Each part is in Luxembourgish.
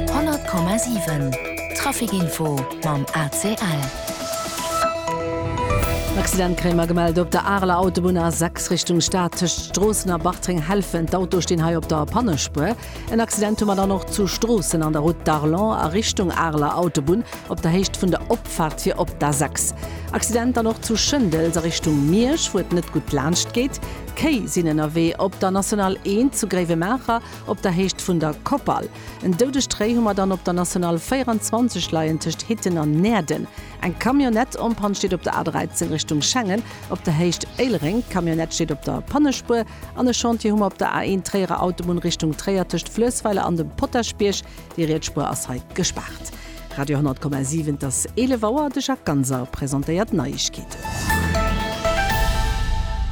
100,7 Traficinfo mam ACL. En Accident kréie mer gemellt op der Areler Autobunn A6 Richtung Stad, tëscht Stroossen a Bartreng. Hellfen, d'Autoe stinn hei op der Pannespuer. En Accident hu mer dann och zu Stroossen an der Route d'Arlon a Richtung Areler Autobunn op der Héicht vun der Opfaart fir op d'A6. Accident dann och zu Schëndels a Richtung Miersch, wou et net gutt laanscht geet. Kéi sinn ënnerwee op der National 1 zu Gréiwemaacher. Op der Héicht vun der Koppal. En doudegt Réi hu mer dann op der National 24 leien, tëscht Hitten an Näerden. Eng Camionnette en Panne steet op der A13 Richtung Schengen, op der Héicht Éilereng. D'Camionnette steet op der Pannespuer. An e Chantier hu mer op der A1 Tréierer Autobunn Richtung Tréier, tëscht Fluessweiler an dem Potaschbierg. Déi Rietsspuer ass hei gespaart. Radio 100,7 Et ass 11 Auer, de Jacques Ganser presentéiert d'Neiegkeeten.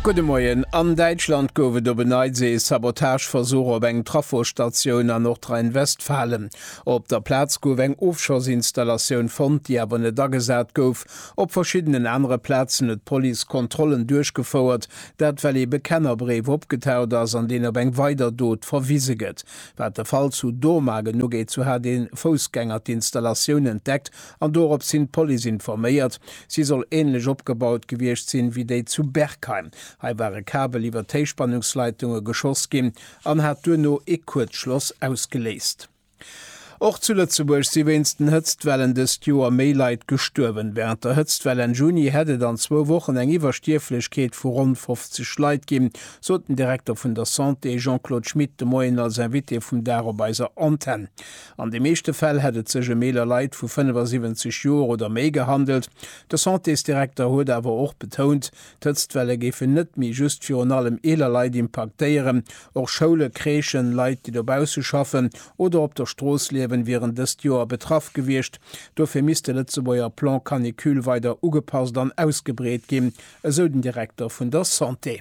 Gudde Moien, An Däitschland gouf et op en Neits ee Sabotageversuch op eng Trafostatioun a Nordrhein-Westfalen. Op der Plaz gouf eng Ofschossinstallatioun fonnt, déi awer net agesat gouf. Op verschiddenen anere Plazen huet d'Police Kontrollen duerchgefouert, dat well ee Bekennerbréif opgetaucht ass, an deen op eng weider Dot verwise gëtt. Wat de Fall zu Dormagen ugeet, sou hat ee Foussgänger d'Installatioun entdeckt an dorops hin d'Police informéiert. Si soll änlech opgebaut gewiescht sinn, wéi déi zu Berkheim. Hei war e Kabel iwwer d'Héichspannungsleitunge geschoss ginn an hat duerno ee Kuerzschloss ausgeléist. Och zu Lëtzebuerg si wéinst den Hëtztwellen dëst Joer méi Leit gestuerwen. Wärend der Hëtztwell Enn Juni hätt et an zwou Wochen eng Iwwerstierflechkeet vu ronn 50 Leit ginn, sot den Direkter vun der Santé Jean-Claude Schmit de Moien als Invité vum Dag op eiser Antenn. An de meeschte Fäll hätt et sech ëm eeler Leit vu 75 Joer oder méi gehandelt. De Santésdirekter huet awer och betount, D'Hëtztwelle géifen net méi just virun allem eeler Leit impaktéieren. Och Schoule, Crèchen, Leit, déi dobausse schaffen oder op der Strooss liewen, wieren dëst Joer betraff gewiescht. Dofir misst de Lëtzebuerger Plan Canicule weider ugepasst an ausgebreet ginn, esou den Direkter vun der Santé.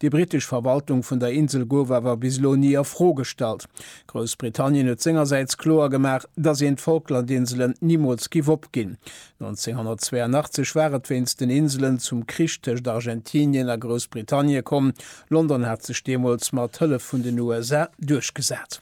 Déi brittesch Verwaltung vun der Insel gouf awer bis elo ni a Fro gestallt. Groussbritannien huet sengersäits kloer gemaach, datt een d'Falklandinselen nimools giff opginn. 1982 war et wéinst den Inselen zum Krich tëscht Argentinien a Groussbritannie komm. London hat sech deemools mat Hëllef vun den USA duerchgesat.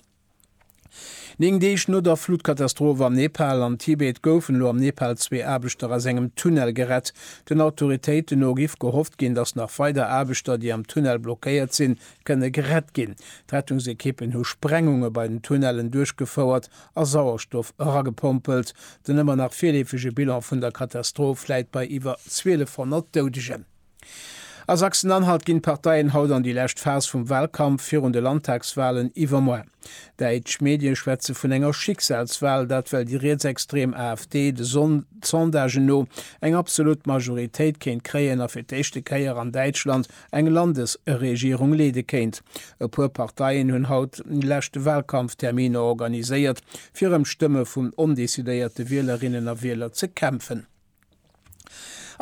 Néng Deeg no der Flutkatastroph am Nepal an Tibet goufen elo am Nepal zwee Aarbechter aus engem Tunnel gerett. Den Autoritéiten no giff gehofft ginn, datt nach weider Aarbechter, déi am Tunnel blockéiert sinn, kënne gerett ginn. D'Rettungsekippen hu Sprengunge bei den Tunnellen duerchgefouert a Sauerstoff eragepompelt. Den ëmmer nach virleefege Bilan vun der Katastroph läit bei iwwer 1.200 Doudegen. A Sachsen-Anhalt ginn d'Parteien haut an déi lescht Phas vum Walkampf virun de Landtagswalen iwwermoar. Däitsch Medie schwätze vun enger Schicksalswal, dat well déi rietsextrem AfD de Sondagen no eng absolut Majoritéit kéint kréien a fir d'éischte Kéier an Däitschland eng Landesregierung leede kéint. E puer Parteien hunn haut déi lescht Walkampfterminer organiséiert, fir ëm d'Stëmme vun ondecidéierte Wielerinnen a Wieler ze kämpfen.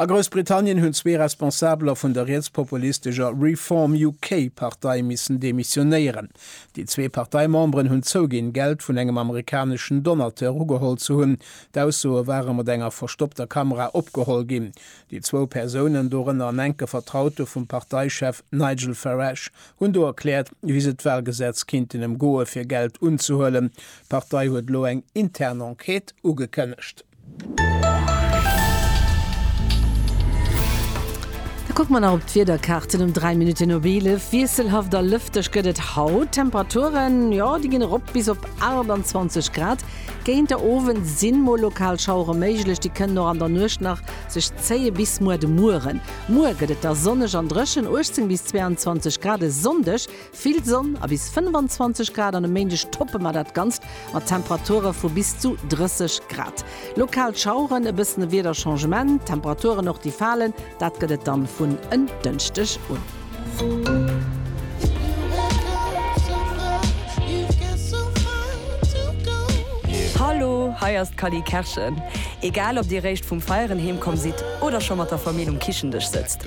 A Groussbritannien hunn zwee Responsabeler vun der rietspopulistescher Reform UK Partei missen demissionéieren. Déi zwee Parteimemberen hunn zouginn, Geld vun engem amerikaneschen Donateur ugeholl ze hunn. D'Aussoe ware mat enger verstoppter Kamera opgeholl ginn. Déi zwou Persounen, dorënner en enke Vertraute vum Parteichef Nigel Farage, hunn do erkläert, wéi se d'Wahlgesetz kinnten ëmgoe fir Geld unzehuelen. D'Partei huet elo eng intern Enquête ugekënnegt. Da kucke mer nach op d'Wiederkaarten um 3 Minutten op 11. Wiesselhaft a lëfteg gëtt et haut. D'Temperaturen, jo, déi ginn erop bis op 28 Grad. Géint de Owend si mol lokal Schauere méiglech, déi kënnen och an der Nuecht nach sech zéie bis muer de Mueren. Muer gëtt et da sonneg an dréchen, 18 bis 22 Grad. E Sonndeg Vill Sonn a bis 25 Grad an e Méindeg toppe mer dat Ganzt mat Temperature vu bis zu 30 Grad. Lokal Schaueren, e bëssen e Wiederchangement, Temperaturen och déi falen, dat gëtt et dann vun en Dënschdeg un. Hallo, hei ass d'Cally Kerschen. Egal ob dir réischt vum Feieren heemkomm sidd oder scho mat der Famill um Kichendësch sëtzt,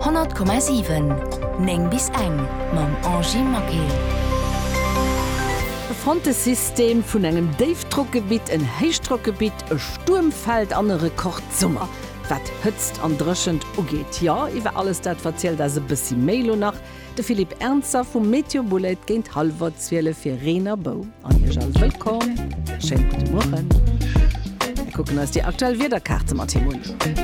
100,7 9 bis eng mam Angie Maquet. E Frontesystem vun engem Déifdrockgebitt, en Héichdrockgebitt, e Stuermfeld an e Rekordsummer, wat Hëtzt an Dréchent ugeet. Jo, iwwer alles dat verzielt eis e bëssi méi elo nach de Philippe Ernzer vum Météo Boulait géint hallwer zwielef fir Reen a Bou. An Iech all wëllkomm, schéine gudde Mueren. Mir kucken eis déi aktuell Wiederkaarte mat him un.